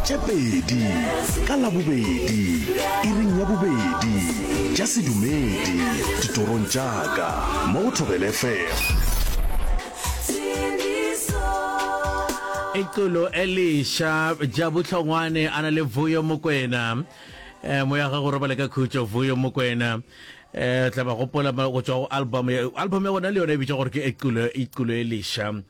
tše pedi ka labobedi iring ya bobedi tša sedumedi ditorong tša ka mo go thobele fm ixolo eliša ja bohlongwane a na le vuyo mokwena um moya ga go robale ka khutšo vuyo mokwena um tla ba gopola go tswa go album album ya gona le yona e bitša gore ke ixolo eliša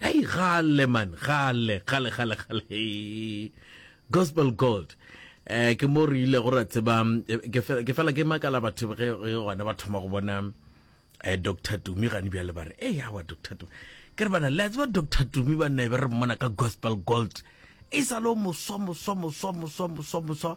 Hey, gale man, gale, gale, gale, gale. Gospel Gold. Eh ke mo re ile go ra tseba eh, ke fe- ke fela ke makala batho ge ge gona ba thoma go bona eh Dr. Tumi gane bjale ba re eh yawa Dr. Tumi. Ke re bana le a tseba Dr. Tumi ba ne ba re mmona ka Gospel Gold. E sa lo moswa moswa moswa moswa moswa moswa.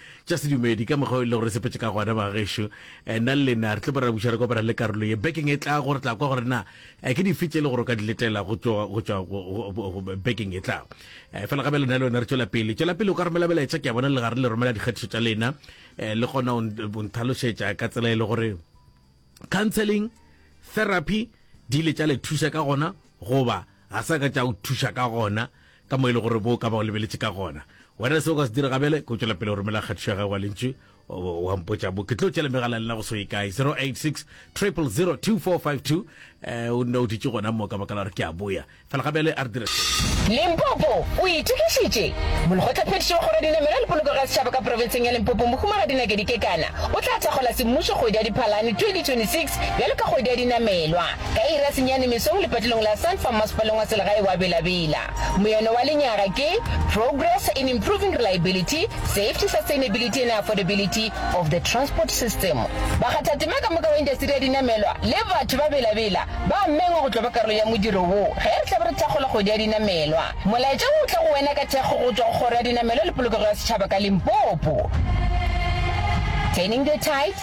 Tša sedumedi, ka mokgwa o e lego re sepetše ka gona, bagešo, eh, nna le lena re tlo ba ra buša re kopana le karolo ye. Bekeng e tlago re tla kwa gore na eh, ke dife tše le gore o ka di letela go tšwa go tšwa go- go- go- go- bekeng e tlago. Eh, Fela gabe lena le wena re tšwela pele. Tšwela pele o ka romela melaetša ke a bona le gare le romela dikgatišo tša lena. Eh, Le gona o nt- o nthalošetša ka tsela e le gore counseling therapy di ile tša le thuša ka gona goba ga sa ka tša o thuša ka gona ka mo e le gore bo ka ba o lebeletše ka gona. Wena se o ka se dira gabele ke o tšwela pele o romela kgathišo ya gago wa lentšu wa mpotša bo ke tlo tšela megala lena go so e kae 086 000 2452 um o nne o ditše gona mo ka baka la gore ke a boya fela gabele a re dire limpopo o itokišitše molekgotlaphethiši wa kgoro dinamelo le poloko ga setšhaba ka profenseng ya limpopo mohumagadi nakedi kekana o tla thakgola semmušo kgwedi ya diphalane 2026 bjalo ka kgwedi ya dinamelwa Ka iri ya senyane mesong lepatilong la Sun Farm Masepaleng wa Selegae wa Bela Bela, moyano wa lenyaga ke Progress in Improving Reliability, Safety, Sustainability and Affordability of the Transport System. Bakgathatema ka moka wa indasteri ya dinamelwa le batho ba Bela Bela ba a mengwa go tlo ba karolo ya modiro wo ge re tlabe re thakgola kgwedi ya dinamelwa. Molaetša wo o tla go wena ka thekgo go tšwa go Kgoro ya Dinamelwa le Polokego ya Setšhaba ka Limpopo. Turning the Tide.